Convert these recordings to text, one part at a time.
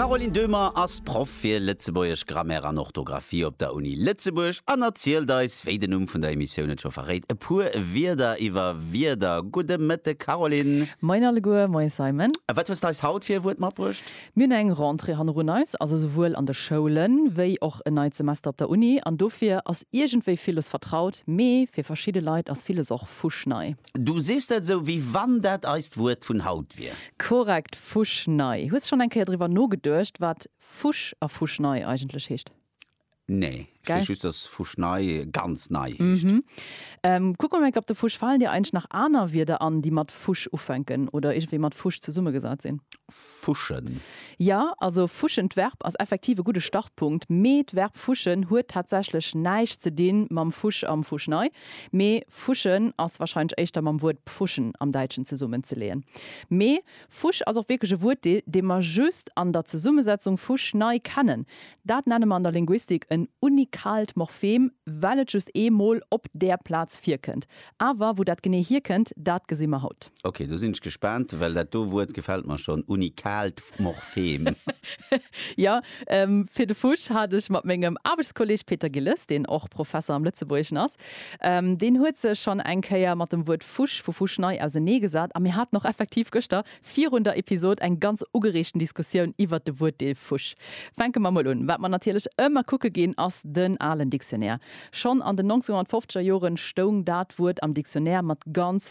D'Caroline Döhmer ass Proff fir Lëtzebuergesch Grammaire an Orthografie op der Uni Lëtzebuerg an erzielt eis, wéi den Numm vun der Emissioun et scho verréit, e puer Wierder iwwer Wierder. Gudde Mëtteg, Caroline! Moien alleguer, moie Simon! A wat hues d'eis haut fir e Wuert matbruecht? Mir hunn eng Rentrée hannerun eis, also souwuel an de Schoulen, wéi och en neit Semester op der Uni. An dofir ass iergendwéi villes vertraut, mee fir verschidde Leit ass villes och fuschnei. Du sees dat esou, wéi wann dat eist Wuert vun haut wier. Korrekt, fuschnei. Hues schonn eng Kéier driwwer nogeduecht, wat fusch a fuschnei eigentlech heescht? Nee. Ech weess just, dass fuschnei ganz nei heescht. Kuck mol Make-up de Fusch. Falen dir eigentlech nach aner Wierder an, déi mat fusch ufänken oder iergendwéi mat fusch zesummegesat sinn? Fuschen. Jo, also fuschen, d'Verb, ass effektiv e gudde Startpunkt, mee d'Verb fuschen huet tatsächlech näischt ze dinn mam Fusch am Fuschnei. Mee fuschen ass warscheinlech éischter mam Wuert pfuschen am Däitschen zesummen ze leeën. Mee fusch ass och wierklech e Wuertdeel, dee mer just an der Zesummesetzung fusch nei kennen. Dat nenne mer an der Linguistik en unikaalt Morphem, well et just ee Mol op där Plaz virkënnt. Awer wou dat genee hierkënnt, dat gesi mer haut. Ok, do sinn ech gespaant, well dat do Wuert gefält mer schonn, unikaalt Morphem. Jo, fir de Fusch hat ech mat mengem Aarbechtskolleeg Peter Gilles, deen och Professer am Lëtzebuergeschen ass, deen huet sech schonn eng Kéier mat dem Wuert Fusch vu Fuschnei ausenee gesat a mir haten och effektiv gëschter virun der Episod eng ganz ugereegten Diskussioun iwwert de Wuertdeel Fusch. Fänke mer mol un, Wat mer natierlech ëmmer kucke ginn, ass den alen Dictionnaire. Schonn an den 1950er Joren stoung dat Wuert am Dictionnaire mat ganz.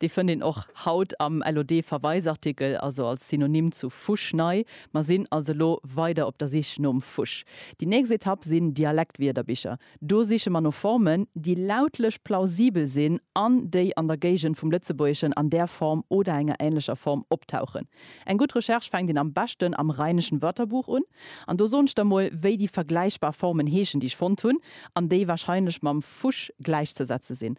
Dee fënnt een och haut am LOD-Verweisartikel, also als Synonym zu Fusch nei. Mer sinn also elo weider op der Sich nom Fusch. Déi nächst Etapp sinn Dialektwierderbicher. Do siche mer no Formen, déi lautlech plausibel sinn an déi an der Géigend vum Lëtzebuergeschen an där Form oder enger änlecher Form optauchen. Eng gutt Recherche fänkt een am beschten am Rheinischen Wörterbuch un. An do soen ech der mol, wéi déi vergläichbar Formen heeschen, déi ech fonnt hunn an déi warscheinlech mam Fusch gläichzesetze sinn.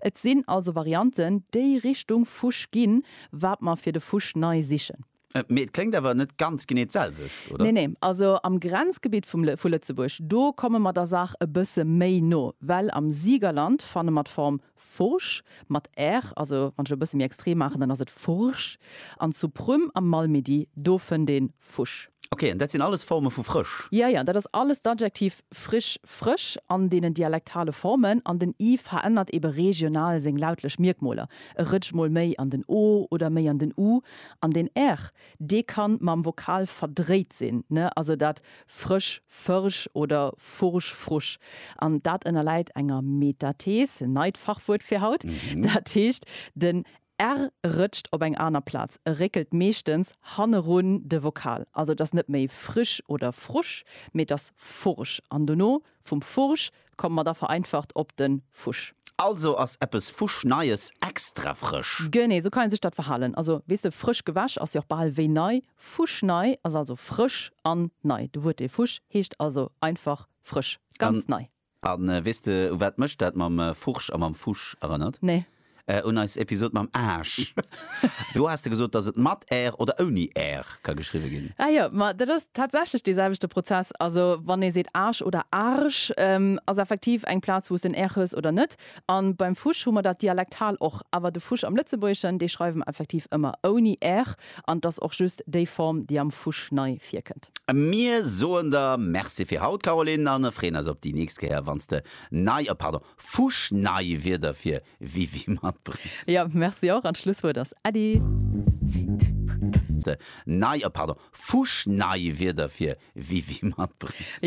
Et sinn also Varianten, déi Richtung Fusch ginn, wat mer fir de Fusch nei sichen. Mee et kléngt awer net ganz genee d'selwecht, oder? Nee, nee. Also am Grenzgebitt vum, vu Lëtzebuerg, do komme mer der Saach e bësse méi no, well am Siegerland fanne mer d'Form Furch mat r, also wann ech et e bësse méi extrem maachen, dann ass et Furch, an zu Prüm am Malmedy, do fënnt ee Fusch. Ok, an dat sinn alles Forme vu frësch? Jo, jo, dat ass alles d'Adjektiv frisch, frësch, an deenen dialektale Formen. An den i verännert eebe regional seng lautlech Mierkmoler, e rëtscht mol méi an den o oder méi an den u. An den r, dee kann mam Vokal verdréit sinn, ne? Also dat frësch, fërsch oder fursch, frusch. An dat ënnerläit enger Metathees, neit Fachwuert fir haut, dat heescht, den R rëtscht op eng aner Plaz, e réckelt meeschtens hannerun de Vokal. Also et ass net méi frisch oder frusch, mee et ass fursch an dono vum fursch komme mer da vereinfacht op de fusch. Also ass eppes fuschneies extra frësch. Genee sou kann ee sech dat verhalen. Also weess de, frësch gewäsch ass jo och bal wéi nei. Fuschnei ass also frësch an nei. De Wuertdeel fusch heescht also einfach frësch, ganz nei. A weess de, u wat mech dat mam Furch a mam Fusch erënnert? Nee. Un eis Episod mam Aasch. Do has de gesot, dass et mat r oder ouni r ka geschriwwe ginn. Ah jo, ma dat ass tatsächlech dee selwechte Prozess. Also wann ee seet Aasch oder Arsch, ass effektiv eng Plaz, wou s den r hues oder net. A beim Fusch hu mer dat dialektal och. Awer de Fusch am Lëtzebuergeschen, dee schreiwe mer effektiv ëmmer ouni r. An et ass och just déi Form, déi am Fusch nei virkënnt. Mir soen der Merci fir haut, Caroline, an freeën eis op déi nächst Kéier, wann s de nei, oh pardon, fuschnei Wierder fir Wiwi matbréngs. Jo, Merci och, an d'Schlusswuert ass Äddi. Nei, oh pardon, fuschnei Wierder fir Wiwi matbréngs.